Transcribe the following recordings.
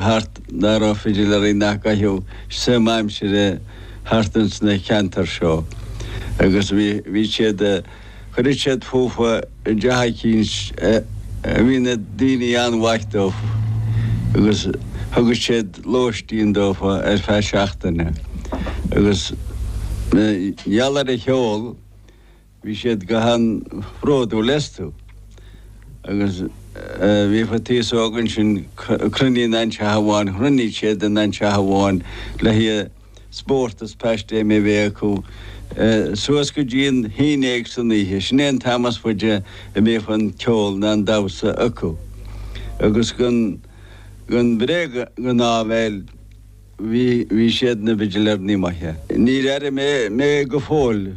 thart, ná raibh fidiléirí nach gcaitheadh suim aimsire thart ins na ceantair seo, agus bhí siad, chuireadh siad fútha i dteach eicínt a bhí na daoine an-mhaith dófa, agus thugadh siad lóistín dófa ar feadh seachtaine, agus i ngeall ar an cheol, Bhí siad go han-bhródúil astu agus bhíodh an t-aos óg ansin ag cruinniú in aon teach amháin, chruinníodh siad in aon teach amháin le haghaidh spórt is paistéim a bheith acu suas go dtí an haon déag san oíche. Sin é an t-am is faide a mbíodh an ceol ná an damhsa acu. Agus gan bréag gan áibhéil bhí siad ina bhfidiléirí maithe. Níor airigh mé go fóill.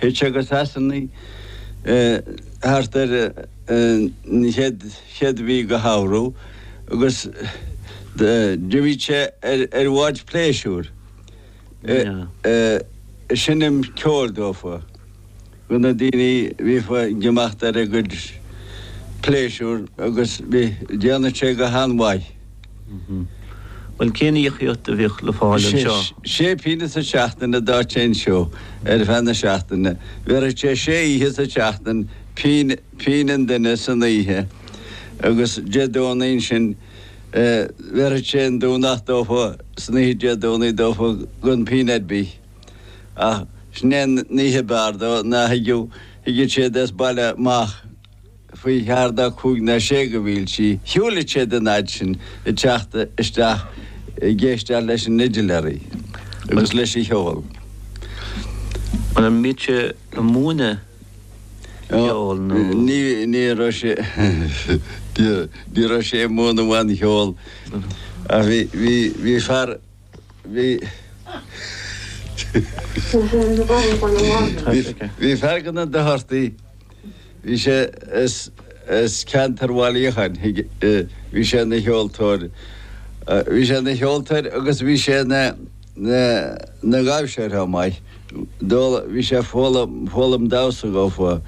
Théadh sé go Sasanaigh thart ar an chéad chéad mhí de shamhradh agus d'imigh sé ar bhád pléisiúir. Ag seinm ceoil dófa do na daoine a bhíodh ag imeacht ar a gcuid pléisiúr agus bhí, déanadh sé go han-mhaith. Bhuel, cén íocaíocht a bhíodh le fáil anseo? Sé pingin sa tseachtain a d'fhaigheadh sé anseo ar feadh na seachtaine. Bhéarfadh sé sé oíche sa tseachtain, pingin an duine san oíche, agus Dé Domhnaigh ansin bhéarfadh sé an Domhnach dófa san oíche, Dé Domhnaigh dófa gan pingin ar bith. Ach sin é an oíche ab fhearr dó, ná thigeadh siad as baile amach. faoi cheathair ná cúig ná sé de mhílte, shiúladh siad an fhaid sin ag teacht isteach ag éisteacht leis an fhidiléaraí agus leis an cheol. An mbíodh sé ag múineadh ceol nó.? Ní raibh sé, ní raibh sé ag múineadh aon cheol ach bhí fear. Bhí fear de na Dochartaigh. Bhí sé as ceantar Bhaile Uí Fhiacháin. Bhí sé ina cheoltóir. Bhí sé ina cheoltóir agus bhí sé ina dhaimhseoir chomh maith. Dole, Bhí sé ag foghlaim, foghlaim damhsa dófa.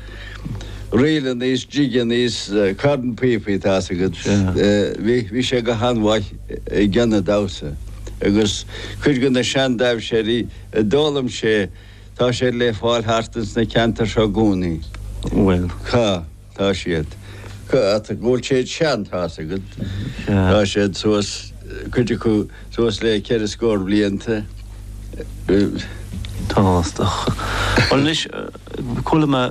Ríleannaí is jigeannaí is cornphíopaí, tá a fhios agat. Bhí, bhí sé go han-mhaith i gceann an damhsa agus cuid de na sean-daimhséirí a d'fhoghlaim sé, tá sé le fáil thart ins na ceantair seo i gcónaí. Bhuel. Cá. Tá siad. Go bhfuil sé i do sheanchas agat, tá siad suas, cuid acu, suas le ceithre scór blianta. Tábhachtach. Bhuel anois, chuala mé,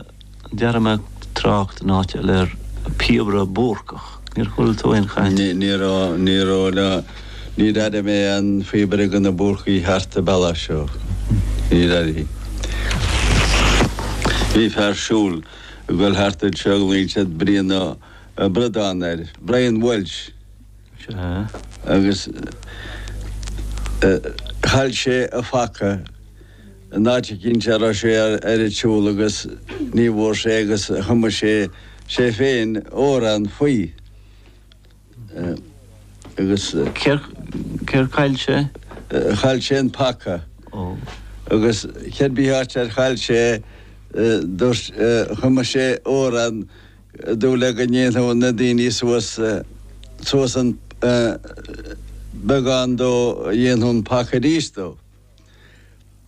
chuala mé trácht in áit eile ar phíobaire Búrcach. Níor chuala tú aon chaint? Ní, ní raibh, ní raibh ná, níor airigh mé aon phíobaire de na Búrcaigh thart an bealach seo. Níor airigh. Bhí fear siúl. ag dul thart anseo, ghlaoidís Brian Ó Bradán air, Brian Welch, agus chaill sé a phaca in áit eicínt a raibh sé ar an tsiúl agus ní bhfuair sé é agus chum sé sé féin amhrán faoi. agus. céard chaill sé? Chaill sé an paca. Ó. Agus cér bith áit ar chaill sé é, dúirt, chum sé amhrán ag súil le go ndéanfadh na daoine suas, suas an, beagán dó, dhéanfadh an paca arís dó.